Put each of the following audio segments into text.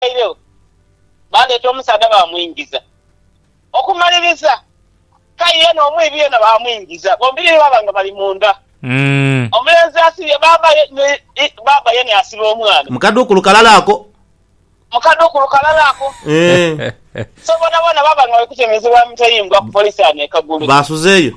baidhwairegho, baaleeta omusaadha baamwingiza. Okumaliriza, k'aye yenha omwibi yenha baamwingiza, bombiriri baaba nga bali munda. Omulenzi asibye bbaabba ye, ni bbaabba ye n'asiba omwana. Mu kadhu ku lukalala ako. Mu kadhu ku lukalala ako. So, boonaboona baaba nga bali kutemezebwa mitayimbwa ku police ano e Kagulu. Baasuzeeyo.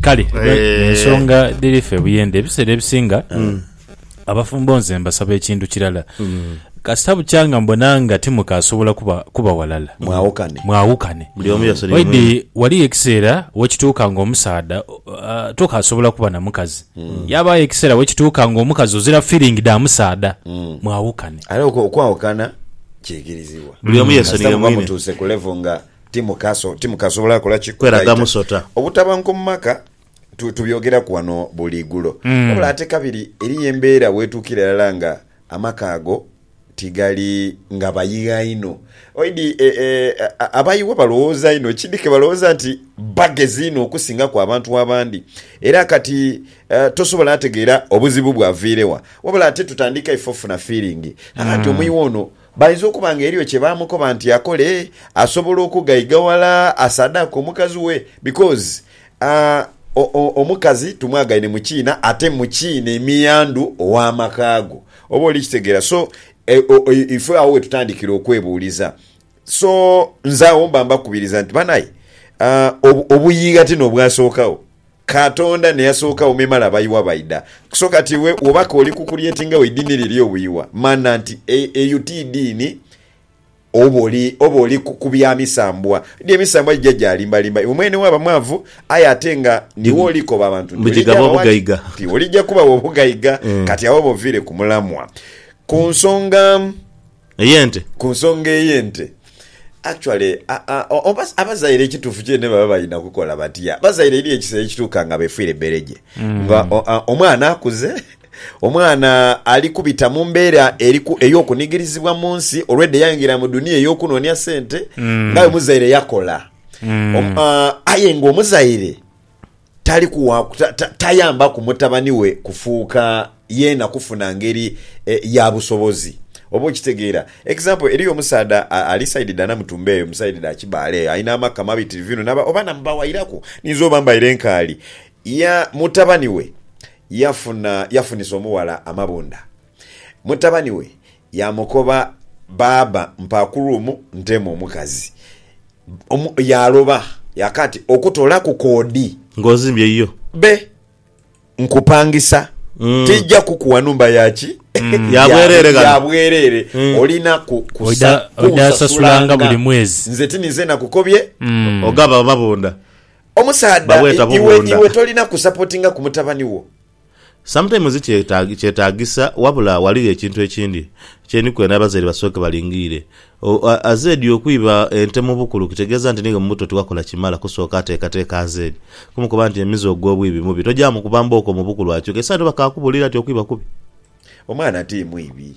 Kale Eh. ensonga dhiri ffe buyende ebiseera ebisinga abafumbo nze mbasaba ekintu kirala kasita bukyanga mbona nga timukasobola kuba, kuba walala Mwawukane. mwawukane Buli omu yasula Oidi, omwine. waliyo ekiseera wekituuka nga omusaadha uh, tokasobola kuba na mukazi yabayo ekiseera wekituuka nga omukazi ozira feeling da musaadha mwawukane Aye okwo- okwawukana kiikirizibwa. Buli omu yesonyiwe Kasita muba mwine. mutuuse ku level nga Timukasobola kola ki kweraga musota? Obutabanguko mu maka tubyogeraku ghano buli igulo. Wabula ate kabiri eriyo embeera weetuukira irala nga amaka ago tigali nga bayigha inho. Oidhi abayighwa balowooza inho ki dhi ke balowooza nti bagezi inho okusingaku abantu abandi. Era kati tosobola ategeera obuzibu bwaviire wa. Wabula ate tutandika ife ofuna fiiringi nti omuyighwa ono Bainza okuba nga eriyo kye baamukoba nti akole asobola okughaiga ghala asaadaake omukazi we because aah omukazi tumwagaine mu kiina ate mu kiina emiyandhu ow'amaka go. Oba oli kitegeera so ife agho we tutandikira okwebuuliza. So nze agho mba mbakubiriza nti banae aah obuyiigha ti n'obwasookagho. Katonda ne yasookagho me male abayiwa baidha. So kati iwe woba k'oli kukuryetinga we idini liri obuyiwa, mana nti eyo ti idini oba oli ku bya misambwa. Di emisambwa gija gyalimbalimba. Iwe mwene waba mwavu aye ate nga niwe oli koba abantu nti oli gya bawa nti oli gya kubawa obugaiga kati agho oba oviire ku mulamwa ku nsonga. ey'ente. Ku nsonga ey'ente, actually oba abazaire ekituufu kyene baba balina kukola batya? Abazaire eriyo ekiseera ekituuka nga beefiire bbereje. Nga omwana akuze, omwana ali kubita mu mbeera ey'okunigirizibwa mu nsi olwedda yaingira mu dunia ey'okunoonia sente ng'aye omuzaire yakola. Aye ng'omuzaire. Tali kuwa, ta, ta, tayambaku mutabani we kufuuka yeena kufuna ngeri e, ya busobozi. Oba okitegeera? Example, eriyo omusaadha a, ali side dha Namutumba eyo, mu side dha Kibaale eyo, alina amaka mabitirivu inho, naba, oba namubawairaku, ninza oba mbaire nkaali. Ya, mutabani we yafuna, yafunisa omughala amabunda. Mutabani we yaamukoba, Baaba, mpa ku room nteemu omukazi. Omu yaaloba yaka ati, Okutoolaku kodi. Ng'ozimbye yo. Be nkupangisa tija kukuwa nhumba ya ki? Ya bwereere ghano. Ya bwereere. Olina ku, kusa, kunsasulanga. Nze ti ninze nakukobye? Ogaba amabunda. Omusaadha, iwe, iwe tolina kusapotingaku mutabani wo? Sometimes kyetaagisa wabula ghaligho ekintu ekindi kye ni kwenda abazaire basooke balingiire. AZ Okwiba ente mu bukulu kitegeeza nti n'iwe mu buto tiwakola kimala kusooka teekateeka AZ kumukoba nti emize ogw'obwibi mubi tojaamukuba mbooko mu bukulu akyuke. Esanyu bakaakubuulira nti okwiba kubi. Omwana ti mwibi.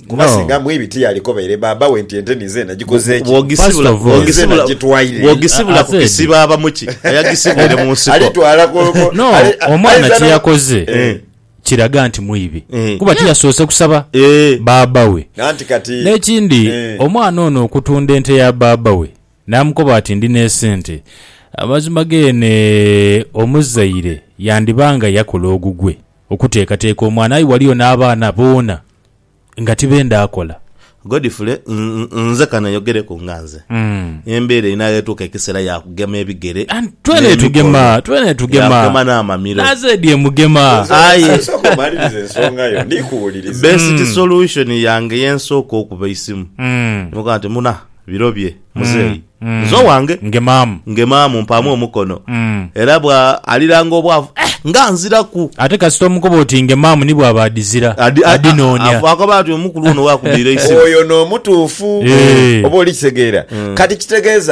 Kuba No. singa mwii biti yalikobaire baaba we nti ente ninze nagikoze ki? Bwogisibula First of all. Ninze bwogisibula nagitwaire. bwogisibula I- I ku said- kisibo ava muki ayagisibwire mu nsiko Alitwala ku- ku- no ali- omwana aizana- kyeyakoze Eh. kiraga nti mwibi Eh. kuba tiyasoose kusaba Eh. baaba we Nanti kati n'ekindi Eh. omwana ono okutunda ente ya baaba we n'amukoba ati ndi n'esente amazima geene omuzaire yandiba nga yakola ogugwe Okuteekateeka omwana aye waliyo n'abaana boona nga tibenda akola. Godfrey, Nze ka neyogereku nga nze. Embeera eno enaaghetuuka ekiseera ya kugema ebigere n'emikono, ya kugema n'amamiro. Nazeedi emugema. Aye best solution yange ye nsooka okuba eisimu ne mugamba nti, Muna, birobye. Muzeeyi, nze owange. Ngemaamu. Ngemaamu, mpaamu omukono. Era bwa aliranga obwavu, eh! nga nziraku! Ate kasita omukoba oti ngemaamu ni bw'aba adizira, Adi- a- a- adinoonia. afu- Akoba ati omukulu ono wakudhira eisimu. Oyo n'omutuufu. Eh. Oba olikitegeera? Kati kitegeeza